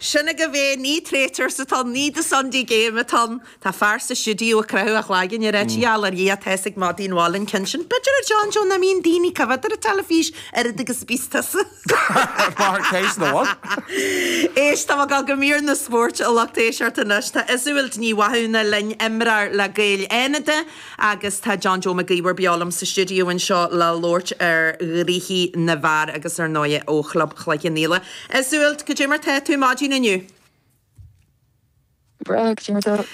Sin agaibh é, ní Traitors atá ann, ní The Sunday Game atá ann. Tá fear sa stiúideo ag croitheadh a chloigeann ag ráit a gheall ar Dhia tá's ag madaí an bhaile an cionn sin. B'fhéidir, a John Joe, nach mbíonn daoine ag coimhéad ar an teilifís oiread agus a bíos tusa. Mar chéist nó an? Éist, táim ag dul go mír na spóirt, a lucht éisteachta, anois. Tá Iseult Ní Mhathúna linn, imreoir le Gaeil Fhánada. Agus tá John Joe McGeever beo liom sa stiúideo anseo le labhairt ar chluichí na bhfear agus ar ndóighe ó Chlub Chloich Cheann Fhaola. A Iseult, go dté mar tá tú maidin inniu! Breá, go dté mar tá.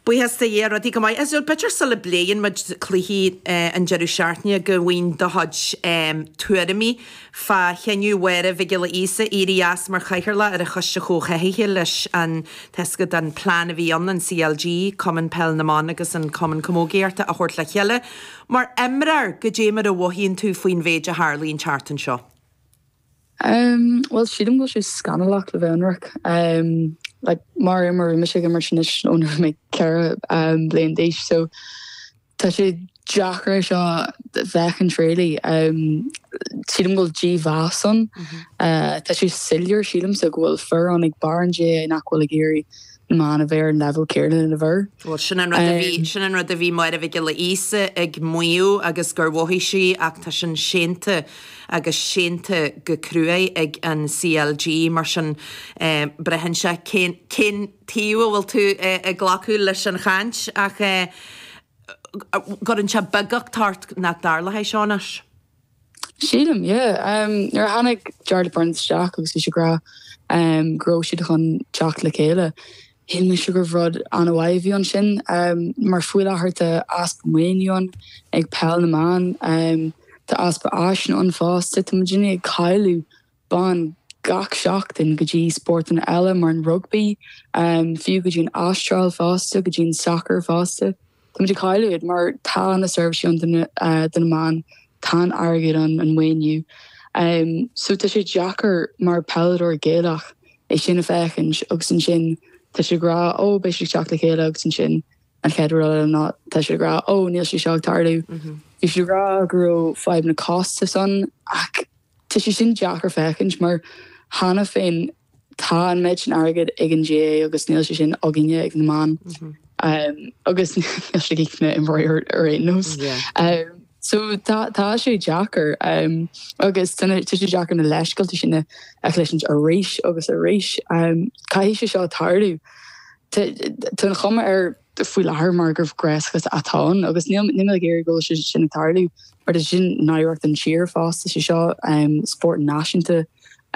Buíochas de Dhia, rudaí go maith. A Iseult, b'fhéidir sula bpléann muid cluichí an deireadh seachtaine go bhfuighinn do chuid tuairimí Fá chinneadh Mháire Mhic Giolla Íosa éirí as mar chathaoirleach ar an Choiste Chomhtháthaithe leis an tasc den phlean a bhí ann an CLG, Cumann Peil na mBan agus an Cumann Camógaíochta a thabhairt le chéile mar imreoir go dté mar a mhothaíonn tú faoin mhéid a tharlaíonn thart anseo? Bhuel, sílim go bhfuil sé scannalach le bheith ionraic. Like, mar imreoir, bhí mise ag imirt anois ó na raibh mé ceithre bliain d'aois, so. Tá sé deacair é seo a fhéachaint really. Sílim go bhfuil dímheas ann. Tá sé soiléir sílimse go bhfuil fir ann ag barr an GAA nach bhfuil ag iarraidh na mban a bheith ar an leibhéal céarna leis na fir. Bhuel sin an rud a bhí, sin an rud a bhí Máire Mhic Giolla Íosa ag maíomh agus gur mhothaigh sí ach tá sin séanta agus séanta go cruaidh ag an CLG mar sin braitheann sé cén, cén, taobh a bhfuil tú ag glacadh leis an chaint, ach an gcuireann sé beaguchtach ort, nach dtarlóidh sé seo anois? Sílim, yeah. Nuair a tháinig Jarlath Burns isteach agus bhí sé ag rá go raibh siad chun teacht le chéile, shíl mise gurbh rud an-mhaith a bhí ansin mar faoi láthair tá easpa maoiniú ann ag Peil na mBan, tá easpa áiseanna ann fós, tá muidinne ag cailleadh ban gach seachtain go dtí spórtanna eile mar an rugbaí, fiú go dtí an Astráil fosta, go dtí an sacar fosta. Táimid ag cailleadh iad mar tá na seirbhísí ann do na mban, tá an airgead ann, an maoiniú. So tá sé deacair mar peileadóir Gaelach é sin a féachaint agus ansin tá siad ag rá 'Ó, beidh siad ag teacht le chéile agus ansin An chéad rud eile ná tá siad ag rá Ó, níl sé seo ag tarlú. Bhí siad ag rá go raibh fadhbanna costais ann, ach tá sé sin deacair féachaint mar cheana féin tá an méid sin airgid ag an GAA agus níl sé sin againne ag na mban agus níl siad ag na imreoirí ar aon nós. So tá sé deacair agus tá sé deacair na leithscéalta sin a chloisint arís agus arís. Caithfidh sé seo tarlú. Tá an chuma air faoi láthair mar gur gréaschuas atá ann agus níl mé ag iarraidh go bhfuil sé sin ag tarlú mar tá sé sin náireach don tír fosta, sé seo spórt náisiúnta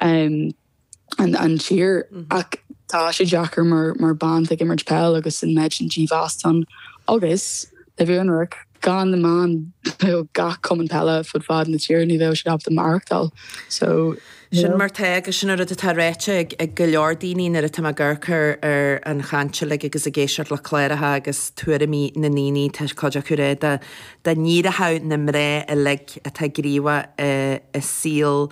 an tír ach tá sé deacair mar bean ag imirt peil agus an méid sin dímheas ann agus, le bheith ionraic, gan na mná nó gach cumann peile fud fad na tíre ní bheadh siad ábalta maireachtáil so. Sin mar atá agus sin an rud atá ráite ag go leor daoine nuair atá mé ag amharc ar an chaint uilig agus ag éisteacht le cláracha agus tuairimí na ndaoine, tá cuid acu ag rá dá n-éireodh na mná uilig atá gníomhach i saol